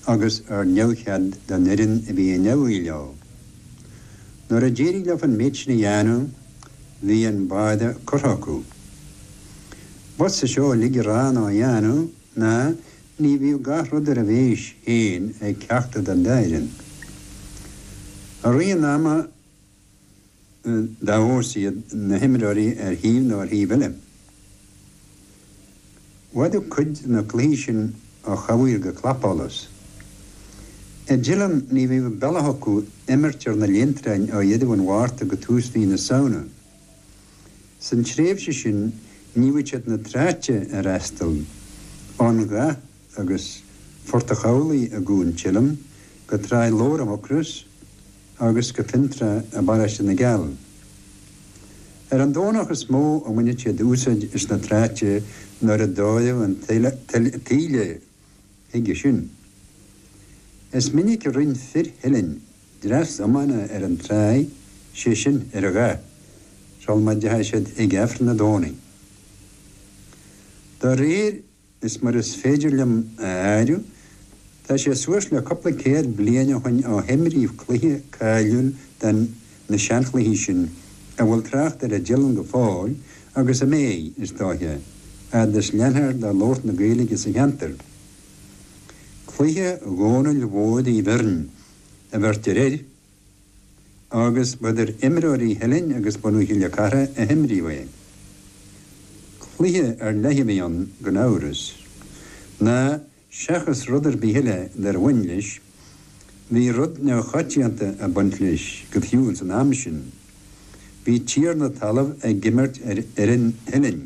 agus ar neamhchead don fhoireann a bhí i ndeabhaidh leo. Nuair a d'éirigh leo an méid sin a dhéanamh, bhí an báire curtha acu. B'fhusa seo uilig a rá ná a dhéanamh ná ní bhíodh gach rud ar a mhéis féin ag ceachtar den dá fhoireann. I rith an ama, dá fheabhas iad na himreoirí ar thaobh nó ar thaobh eile. Mhaireadh cuid de na cluichí sin ó chamhaoir go clapsholas. I dTeileann ní bhíodh an bealach acu imirt ar na linntreain ó dheireadh an Mhárta go tús mhí na Samhna. San tréimhse sin níodh siad na tráite a fhreastal ón Ghath. agus Phort an Chabhlaigh i gCuan Theilinn, go Tráigh Lobhair i Mucros agus go Fionntrá i bparóiste na gCeall. Ar an Domhnach is mó a bhaineadh siad úsáid as na tráite nuair a d'fhóireadh an taoille chuige sin. Is minic a rinn fir Theilinn dreas iomána ar an tráigh, sé sin, ar an Ghath, sul má dteachaigh siad chuig Aifreann an Domhnaigh. De réir. Is mar is féidir liom a áireamh, tá sé suas le cúpla céad bliain ó shoin ó himríodh cluiche cáiliúil de na seanchluichí sin a bhfuil trácht orthu i dTeileann go fóill agus a mbeidh, is dóiche, a fhad is leanfar de labhairt na Gaeilge sa cheantar. Cluiche Dhónaill Mhóir Uí Bheirn, a bheirtear air. agus b'idir imreoirí Theilinn agus bunadh Chille Cartha a himríodh é. Cluiche ar leith a bhí ann gan amhras, ná seachas rud ar bith eile dár bhain leis, bhí rud neamhchoitianta ag baint leis go fiú ins an am sin, bhí tiarna talaimh ag imirt ar fhoireann Theilinn.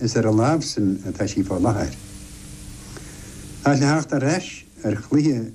Is ar a lámh sin atá sí fá láthair. Ach le theacht ar ais ar chluiche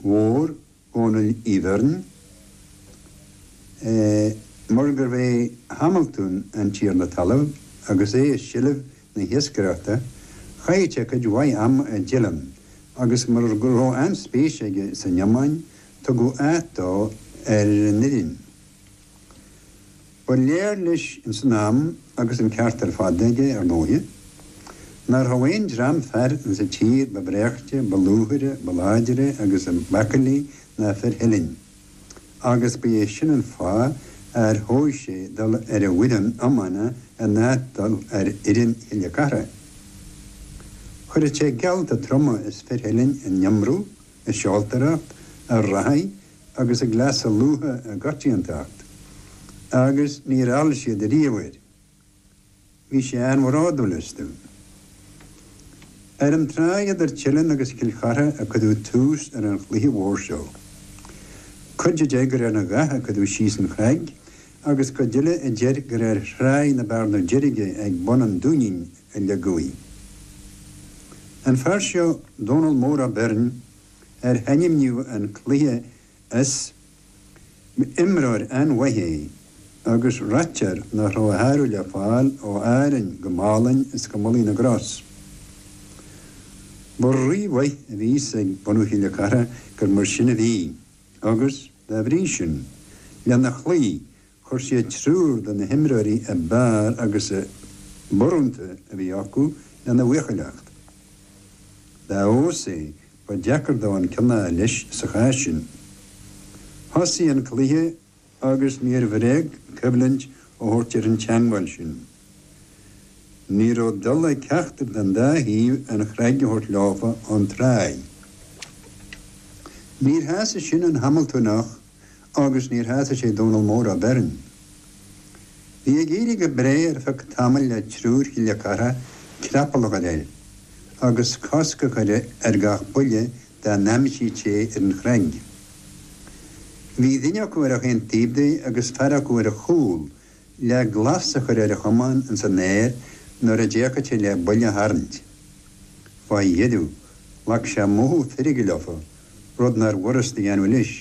mhór Dhónaill Uí Bheirn, eh, mar gurbh é Hamaltún an tiarna talaimh agus é i seilbh na hiascaireachta, chaith sé cuid mhaith ama i dTeileann agus mar go raibh an-spéis aige san iomáin, tugadh áit dó ar an fhoireann. Ba léir leis ins an am, agus an ceart ar fad aige, ar ndóighe, nach raibh aon dream fear insa tír ba bhreáichte, ba lúfaire, ba láidre agus ab aicillí ná fir Theilinn, agus ba é sin an fáth ar thogh sé dul ar a bhfoireann iomána in áit dul ar fhoireann Chille Cartha. Chuireadh sé geallta troma as fir Theilinn in iomramh, i seoltóireacht, i reathaidh, agus ag cleasa lútha i gcoitiantacht, agus níor fheall siad ariamh air. Bhí sé an-bhródúil astu. Ar an tráigh idir Teileann agus Cill Chartha a cuireadh tús ar an chluiche mhór seo. Cuid a deir gur ar an Ghaoth a cuireadh síos an chnag agus cuid eile a deir gur ar thráigh na Bearna Deirge ag bun an Dúinín a leagadh í. An fear seo, Dónall Mór Ó Beirn, ar hainmníodh an cluiche as. Imreoir an-mhaith é agus ráitear nach raibh a shárú le fáil ó Árainn go Málainn is go Mullaigh na gCros. Ba rí-mhaith a bhí a fhios ag bunadh Chille Cartha gur mar sin a bhí agus, dá bhrí sin, lena chloí Chuir siad triúr de na himreoirí ab fhearr agus ab urrúnta a bhí acu lena bhuachailleacht. Dá fheabhas é, ba deacair dó an ceann a thabhairt leis sa chás sin. Thosaigh an cluiche agus níor bhréag coimhlint a thabhairt ar an teangmháil sin. Ní raibh dul ag ceachtar den dá thaobh an chnag a thabhairt leofa ón tráigh. Níor shásaigh sin an Hamaltúnach. agus níor shásaigh sé Dónall Mór Ó Beirn. Bhí ag éirí go breá ar feadh tamaill le triúr Chille Cartha creapall a chur air agus cosc a chur ar gach buille dá n-aimsíodh sé ar an chnaig. Bhí duine acu ar achan taobh de agus fear acu ar a chúl le glas a chur ar a chamán ins an aer nuair a d'fhéachadh sé le buille a tharraingt. Fá dheireadh, ghlac sé mothú feirge leofa, rud nárbh fhurast a dhéanamh leis.